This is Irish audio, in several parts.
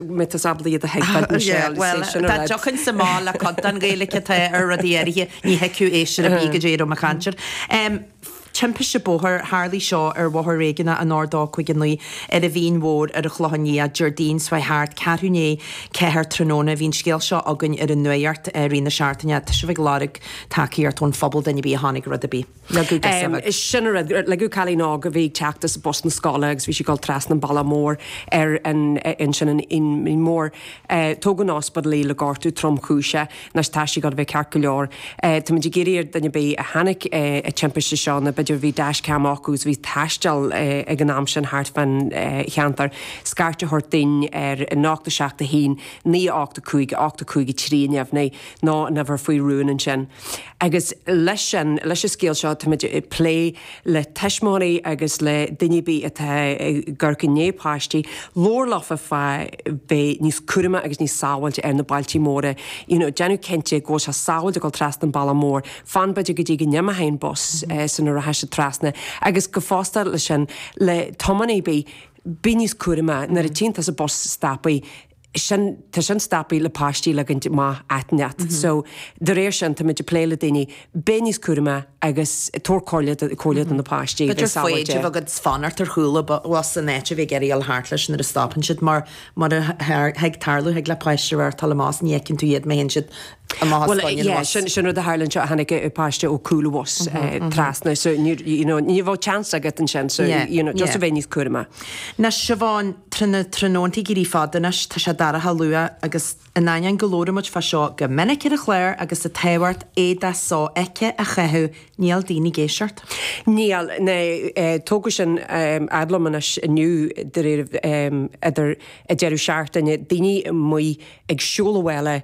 Metesáblaí iad a thuig Bheld and Shell, is é sin a raibh. Dá dtiocfainnse amach le cuid den Ghaeilge atá ar rudaí áirithe, ní thuigfeadh éisteoir ar bith goidé a raibh mé ag caint air. Timpiste bóthair, Tharlaigh seo ar Bhóthar Réigiúnach an R259 ar an Mhín Mhór ar an Chlochán Liath Déardaoin seo a chuaigh thart, ceathrú i ndiaidh a ceathair tráthnóna. Bhí an scéal seo againn ar an Nuacht i rith na seachtaine. Tá sibh ag lorg tacaíocht ón phobal, duine ar bith a chonaic rud ar bith. Ligeadh go sifead. Is sin a rinneadh. Leagadh cailín óg a bhí ag teacht as bus na scoile agus bhí sí ag dul trasna an bealach mór ar an, ansin an Mhín Mhór. Tugadh chun an ospidéil í le gortú tromchúiseach anois tá sí ag dul a bheith ceart go leor. Táimid ag iarraidh ar duine ar bith a chonaic an timpiste seo nó b'fhéidir bhí dash cam acu agus bhí ag taisteal ag an am sin thart fán cheantar, scairt a thabhairt dúinn ar 071 9 85 85 3 a neamhní nó an uimhir faoi rún ansin. Agus leis an scéal seo táimid ag plé le tuismitheoirí agus le daoine ar bith atá ag amharc i ndiaidh páistí labhairt leofa fá bheith níos cúramaí agus níos sábháilte ar na bealtaí móra. You know, déanamh cinnte go bhfuil sé sábháilte ag dul trasna an bealach mór, fan b'fhéidir go dtí go n-imeoidh an bus sula rachaidh siad trasna. Agus go fosta leis an, le tománaí ar bith, bí níos cúramaí, nuair a tchíonn tusa an bus stoptha. sin, tá sin stoptha le páistí a ligint amach aitinn leat. So de réir sin táimid ag plé le daoine, bheith níos cúramaí agus tabhair comhairle do comhairle do na páistí, bheith sábháilte. B'fhéidir agus fanacht ar chúl an bhus in áit a bheith ag iarraidh a dhul thart leis nuair a stopann siad mar rud a thig tarlú thig le páiste a dhul amach is ní fheiceann tú iad má théann siad Bhuel yeah sin sin rud a tharla anseo tháinig páiste ó chúl an bhus trasna so you know ní bheadh chance agat ansin so you know just a bheith níos cúramaí. Now Siobhán, tá na tráthnóntaí ag éirí fada anois, tá sé dorcha luath agus in ainneoin go labhraímid fá seo go minic ar an chlár agus an tábhacht éadaí so-fheicthe a chaitheamh níl daoine ag éisteacht. Níl, now tugadh sin fhad liom anois inniu de réir idir a deireadh seachtaine, daoine amuigh ag siúl abhaile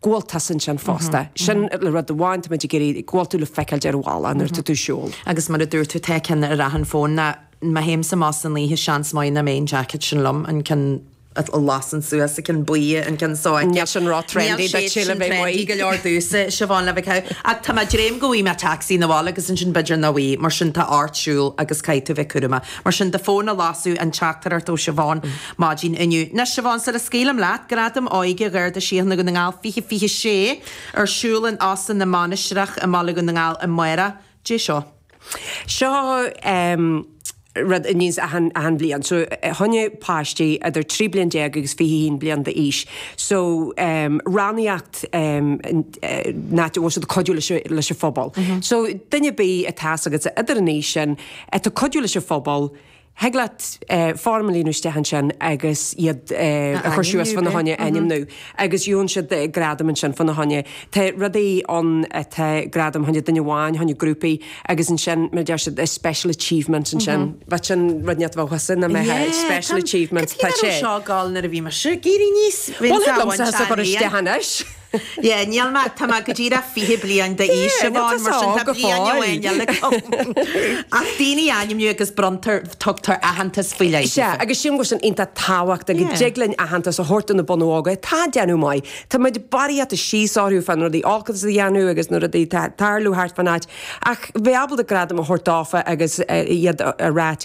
Go bhfuil tú ansin fosta. Sin rud amháin, tá muid ag iarraidh go bhfuil tú le feiceáil ar an bhealach nuair atá tú ag siúl. Agus mar a dúirt tú tá ceann ar achan fón now má théimse amach san oíche seans maith nach mbeidh an jacket sin liom, an ceann a lasann suas, an ceann buí, an ceann seo. Níl sin ró trendy duitse le bheith amuigh. Níl siad sin trendy go leor domhsa, Siobhán, le bheith ceann. Ach tá mé ag dréim go bhfaighidh mé tacsaí 'na bhaile agus ansin b'fhéidir nach bhfaighidh. Mar sin tá ort siúl agus caithfidh tú bheith cúramach. Mar sin do fón a lasadh, an teachtaireacht ó Siobhán. Maidin inniu. Anois, Siobhán, sula scaoilim leat, Gradaim Óige Gharda Síochana Dhún na nGall 2026 ar siúl in Óstán na Mainistreach i mBaile Dhún na nGall i mí Feabhra. Goidé seo? Seo rud a níos achan bhliain. So, fá choinne páistí idir 13 bliain agus 21 bliain d'aois so rannaíocht na bhfuil siad ag cuidiú leis leis an phobal. So, duine ar bith atá a fhios agat idir an aois sin atá ag cuidiú leis an phobal, thig leat foirm a líonadh isteach ansin agus iad a chur suas fána choinne, a ainmniú agus gheobhann siad gradam ansin fána choinne. Tá rudaí ann atá gradam choinne duine amháin, choinne grúpaí agus ansin mar a deir siad special achievement ansin. Bheadh sin rud níos dóchasaí ná mbeadh ag special achievement. Tá sé. Cad a bhí ar an seágáil nuair a bhí mise ag éirí aníos? Bhí an seágán sean. Bhuel, thig liomsa a chur isteach anois. Yeah, níl mé, tá mé go díreach fiche bliain d'aois, Siobhán, mar sin tá bliain amháin eile agam. Ach daoine a ainmniú agus bronntar, tugtar aitheantas faoi leith. Sea, agus sílim go bhfuil sin iontach tábhachtach, go dtig linn aitheantas a thabhairt do na bunadh óga atá ag déanamh maith. Tá muid barraíocht síos orthu fá na rudaí olca a dhéanamh agus na rudaí atá ag tarlú thart fan áit, ach bheith ábalta gradam a thabhairt dófa agus iad a ráit,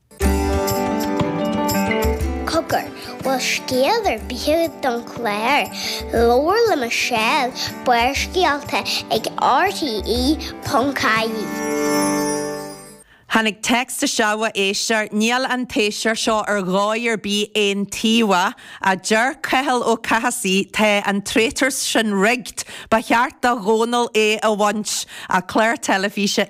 Cogar, bhfuil scéal ar bith agat don chlár? Labhair le Michelle, Barrscéalta ag RTE.ie. Tháinig text isteach ó éisteoir, Níl an t-éisteoir seo ar dhóigh ar bith aontaobhach, a deir Cathal Ó Cathasaigh, tá an traitors sin rigged, ba cheart do Dhónall é a bhaint, a clár teilifíse